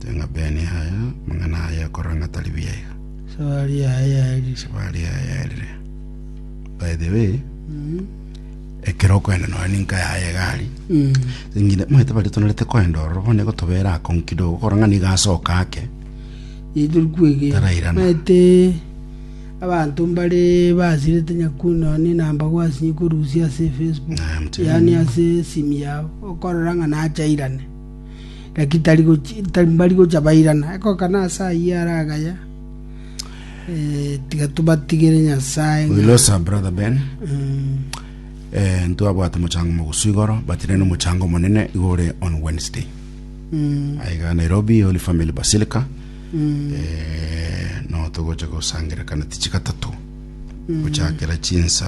Tenga Ben yaya, amang'ana aye akorora ng'a tari buya iga. Sabari yaye yaerire. Sabari yaye yaerire. By the way, ekero okwenda nonye ninka yaye egari, Mm. ng'ina omanyete baria tonorete kwenda ororo bono nigo tobera akong'u kidogo okorora ng'a nigo asoka ake. Ituri kwege. Tarairana. Mete abanto mbare basirete nyakuno ni namba gwasinye korusia ase Facebook. Naye mutebe. Yani ase simu yao okorora ng'a nachairane. Naki tari mbari gocha bairana, ekogokana ase ayio are agaya. Eh, tiga tobatigere Nyasae. We ng'a- lost our brother Ben. Mm. Eh, ntwabwate mochango mogusu igoro, but nene omochango omonene igo ore on Wednesday. Mm. Aiga Nairobi, Holy Family Basilica. Mm. Eh, no togocha gosangerekana tichi gatatu. Gochakera chinsa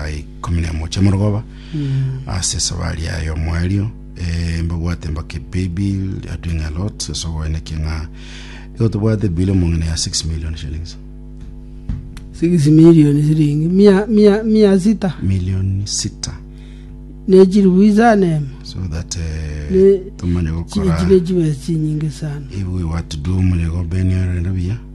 ikumi na emo chiamorogoba. Mm. Ase esabari yaye omoerio. Ee, mbabwate mbake paybill are doing a lot ase oboene ki ng'a igo tobwate bill omong'ina ya 6 million shillings 6 milioni siringi mia mia mia sita million sita ne chiribu isano emo so that eh, Ne- tomanye chiri gokora chine chibesa chinyinge sana ibu we what to do mune go bene rende buya